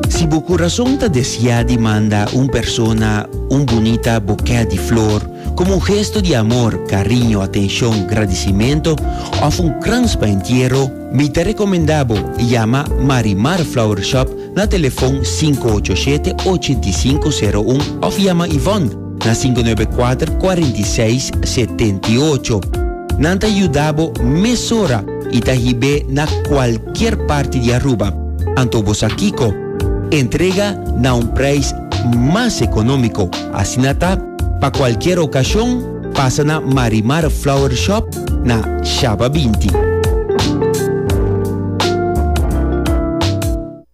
Si bo kurason ta desiá di manda un persona un bunita bokè di flor komo un gesto di amor, kariño, atenshon, gradisimentu òf un krans pa entiero, mi ta rekomendá bo yama Marimar Flower Shop na telefòn sinku ocho shete, ochenta i sinku, seru un òf yama Yvonne. na sinku nuebe kuater kuarenta i seis setenta i ocho. Nan ta yuda bo mesora i ta hib'é na kualkier parti di Aruba. Anto bo sa kiko? Entrega na un preis mas ekonómiko. Asina ta, pa kualkier okashon, pasa na Marimar Flower Shop na Shaba binti.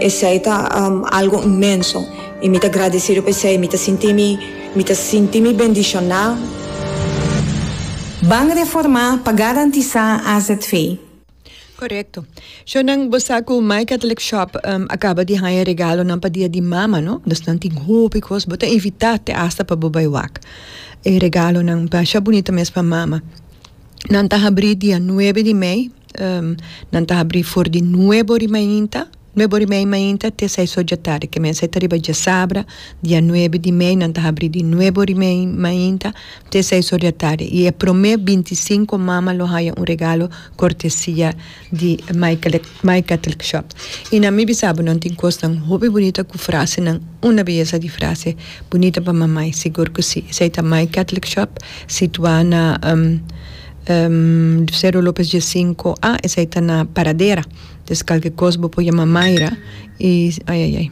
Esei ta algo inmenso i mi ta gradesido pa esei. Mi ta sinti mi, mi ta sinti mi bendishoná. Ban reformá pa garantisá azv. Korekto. Shonnan, bo sa ku My Catholic Shop a kaba di haña regalonan pa Dia di Mama, no? Dus nan tin hopi kos. Bo ta invitá te asta pa bo bai wak e regalonan. Mashá bunita mes pa mama. nan ta habrí dia nuebe di mei nan ta habrí for di nuebe ora mainta nuebe ora mei mainta te seis ora dje tardi ke mester ta riba djasabra dia nuebe di mei nan ta habrí di nuebe ora mei mainta te seis ora dje tardi i e prome binti sinku mama lo haya un regalo kortesia di My Catholic Shop y na mi bisabo nan tin cosnan hopi bunita cu frasenan una beyesa di frase bunita pa mamay sigur cu si esey ta My Catholic Shop situa na Cero Lopez dies cinco a esey ta na Paradera des calke cos bo por yama Mayra y ayayay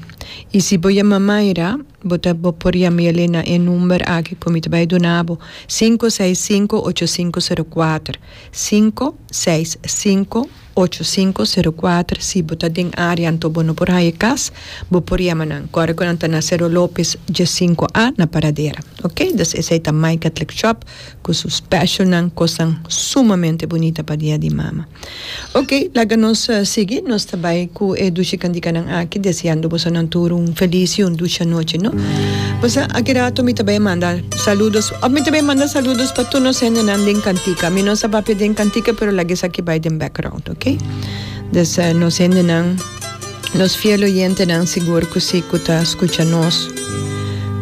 y si bo yama Mayra bo ta bo por yama ya le na e number aki cu mi ta bay dunabo cinco seis cinco ocho cinco cero cuatro cinco seis sinku ocho sinku sero kuater si bo ta den área anto bo no por haña kas bo por yama nan kòrda ku nan ta na Sero López dje sinku a na Paradera ok dus esei ta My Catholic Shop ku su specialnan kosnan sumamente bunita pa Dia di Mama ok laga nos sigui nos ta bai ku e dushi kandikanan aki deseando boso nan tur un feliz y un dushi anochi no bosa aki rato mi ta bai a manda. Saludos. Of mi ta bay manda saludos pa tur nos hendenan den cantica. Mi no sa papia den cantica pero laga esaki bay den background, ok? Dus nos hendenan, nos fiel oyentenan sigur cu si cu ta scucha nos.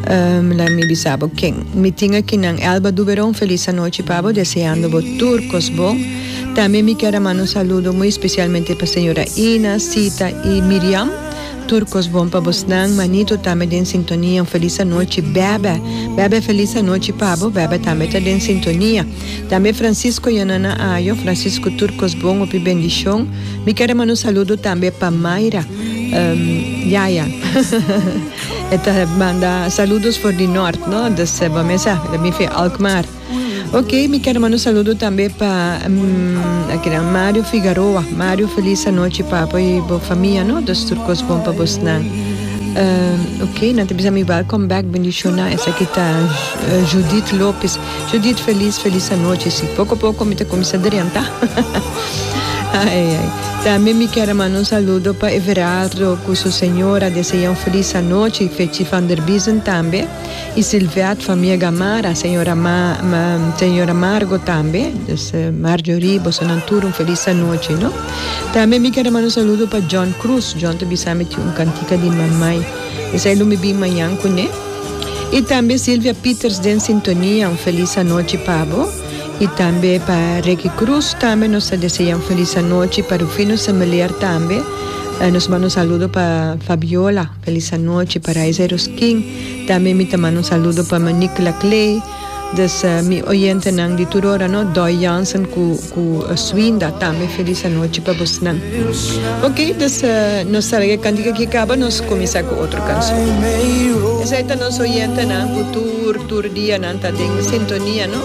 Laat mi bisa bo ken mi tin akinan. Elba Duberon, feliz anochi pa bo, deseando bo tur cos bon. Tambe mi kier a manda un saludo muy especialmente pa señora Ina, Sita y Miriam. Tur kos bon pa bosnan manito tambe den sintonia un felis anochi bèbè bèbè felis anochi pa bo bèbè tambe ta den sintonia tambe Francisco Yanana Ayo Francisco tur kos bon hopi bendishon mi ker a mana un saludo tambe pa Mayra yaya e ta manda saludos for di nort no dus bo mesa mi fi Alkmaar. Ok, mi ker manda un saludo tambe pa akinan Mario Figaroa. Mario, feliz anochi pa bo y bo famia, no? Dus tur kos bon pa bosnan. Uh, ok, nan ta bisa mi welcome back, bendiciona. Esaki ta eh, Judith Lopez. Judith, feliz, feliz anochi. Si, poco poco mi ta comienza drenta. Ay, ay. También mi quiero mandar un saludo para Everardo con su señora. Desea un feliz anoche. Fechi van der Biesen también. Y Sylviat famia Gamarra, señora señora Margo tambe, dus Marjorie, bosonan tur un feliz anochi no. Tambe mi quiero manda un saludo pa John Cruz, John ta bisa mi tin un cantica di Mamay, esai lo mi bin mañan cu ne. Y tambe Sylvia Pieters den sintonia, un feliz anochi pa bo. Y tambe pa Ricky Cruz tambe nos ta desea un feliz anochi, pa Rufino Similear tambe nos manda un saludo pa Fabiola. Felis anochi pa Raiza Ruskin, tambe mi ta manda un saludo pa ma Nicla Clay, dus mi oyentenan di tur ora no, Doy Jansen cu cu Swinda tambe felis anochi pa bosnan. Ok, dus nos ta laga e cantica aki caba, nos cuminsa cu otro cancion. Esai ta nos oyentenan cu tur tur dia nan ta den sintonia no.